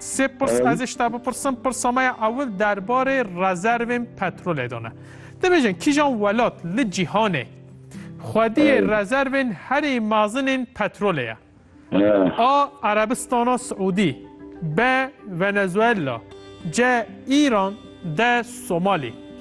Sê pirs ez ê ji te bipirsim, pirsa me ya ewil derbarê rezervên petrolê de ne. Dibêjin kîjan welat li cîhanê xwediyê rezervên herî mezin ên petrolê ye? A Erebistana Siûdî, B Venezuela, C Îran, D Somalî.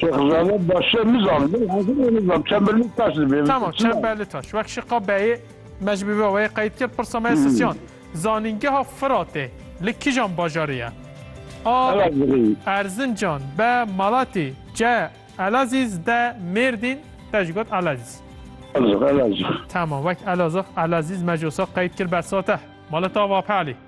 Şexzade başe nizam hazir nizam çemberli taş dibe. Tamam çemberli taş. Wek şiqa beyê me ji bî wê qeyd kir pirsa me sisyan. Zanîngeha Firatê li kijan bajarê ye? A. Erzincan B. Malatî C. Elazîz D. Mêrdîn Te jî got Elazîz. Elazig Elazig. Tamam wek Elazig Elazîz me jî wisa qeyd kir bersate. Maleta Vapelî.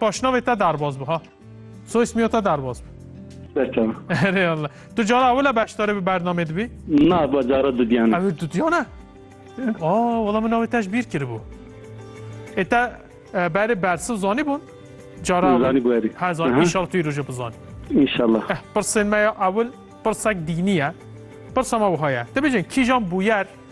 Paşnavê te derbas bi ha. Soy ismiya te derbas bi. Berçem. Erê Allah. Tu cara ewile beşdarê bi bernamê dibî? Na ba cara dudiyane. Ew dudiyane? Aa, wala min navê te ji bîr kiribû. Ê te e, berê bersiv zanî bûn? Cara Zanî bû erê. Ha zanî inşallah tu roje bizanî. İnşallah. Eh, pirsên me ya ewil pirsek dînî ye. Pirsa me wiha ye. Dibêjin kîjan bûyer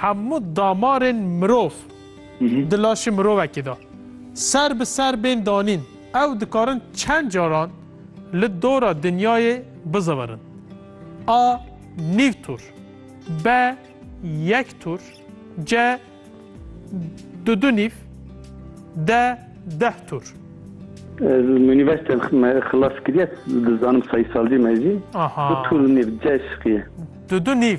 Hemû damarên mirov di laşê mirovekê de ser bi ser bên danîn, ew dikarin çend caran li dora dinyayê bizewirin. A nîv tur, B yek tur, C du du nîv, D deh tur. Ez unîversîteyan xilas kiriye, dizanim sayîsalcî me jî. Du tur û nîv C şiqî ye. Du du nîv.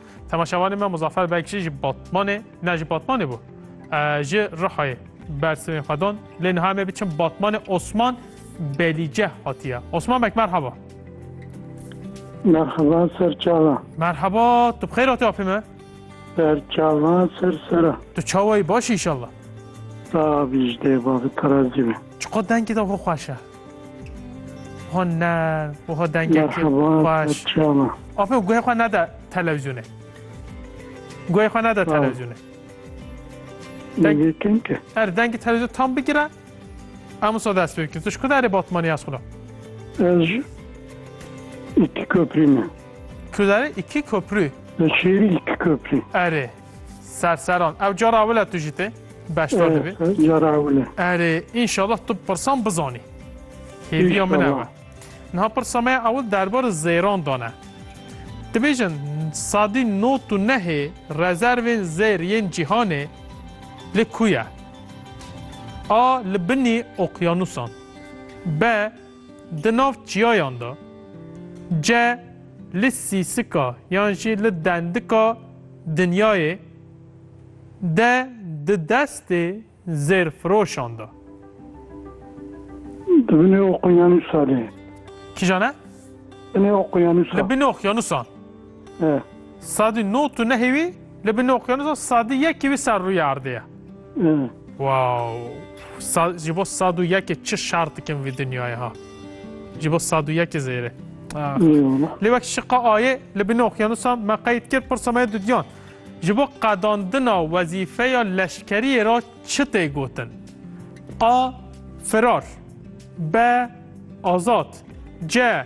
Temaşevanê me Muzaffer Bekçî ji Batmanê ne ji Batmanê bû. Ji Rihayê bersivên xwe dan lê niha me biçim Batmanê Osman Belîce hatiye. Osman Bek merhaba. Merhaba serçava. Merhaba, tu bixêr hatî apê me? Serçava ser sera. Tu çawayî baş îşallah. Sağ ol Bicdê, bavê terazî be. Çiqo dengê de xwe xweş e. Hon ne wiha dengekî baş. Apo guhê xwe neda televizyonê. Guhê xwe neda televizyonê. Her dengê televizyon tam bigire em wisa dest pê bikin. Tu ji ku derê batmanî ez xwina? Ez ji îkî köprî me. Tu derê îkî köprî? Li şêrî îkî köprî. Erê. Serseran. Ew cara wile tu jî tê? Beşdar dibî. Cara wile. Erê, înşallah tu pirsan bizanî. Hêviya min ew e. Niha pirsa me ew derbarê zêran dane. Dibêjin sadî not û nehê rezervên zêr yên cîhanê li ku ye? A li binî oqyanusan. B Di nav çiyayan de ce li sîsika yan jî li dendika dinyayê de di destê zêrfiroşan de. Di binê oqyanûsa de. Kîjan e? Binê oqyanûsa. Li binê oqyanûsan. Sadî no tu nehê wî li bin okyanusa sadî yekê wî ser rûyê erdê ye. Wow ji bo sad û yekê çi şer dikin vî dinyayê ha. Ji bo sad û yekê zêrê. Lê wek şiqa ayê li bin okyanusa me qeyd kir pirsa me dudiyan. Ji bo qedandina wezîfeya leşkeriyê re çi tê gotin? A. Firar B. Azad C.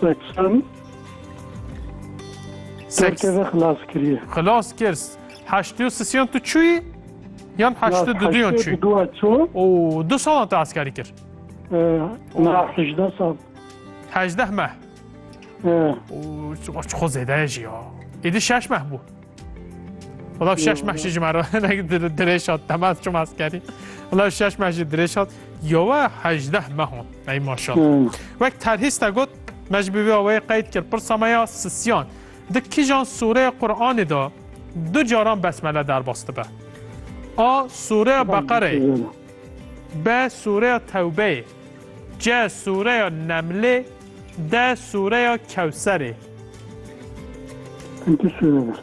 Seksen. Seks. Kerkeve xilas kiriye. Xilas kir. Heştê sisiyan tu çûyî? Yan heştê duduyan çûyî? Heştê duduyan çû. Û du salan te eskerî kir? Na hejdeh sal. Hejdeh meh. Û çi xwe zêde ye jî ya. Êdî şeş meh bû. Ola şeş meşi ji mera dirêşat temel çum askerî. Ola şeş meşi dirêşat yowe hejdeh mehon ey maşal. Wek terhîsta got me ji bivê aweyê qeyd kir pirsa me ya sisiyan. Di kijan sûreya Qur'anê da du caran besmele derbas dibe. A sûreya Beqereyê B sûreya Tewbeyê C sûreya Nemlê D sûreya Kewserê. Pêncî sûre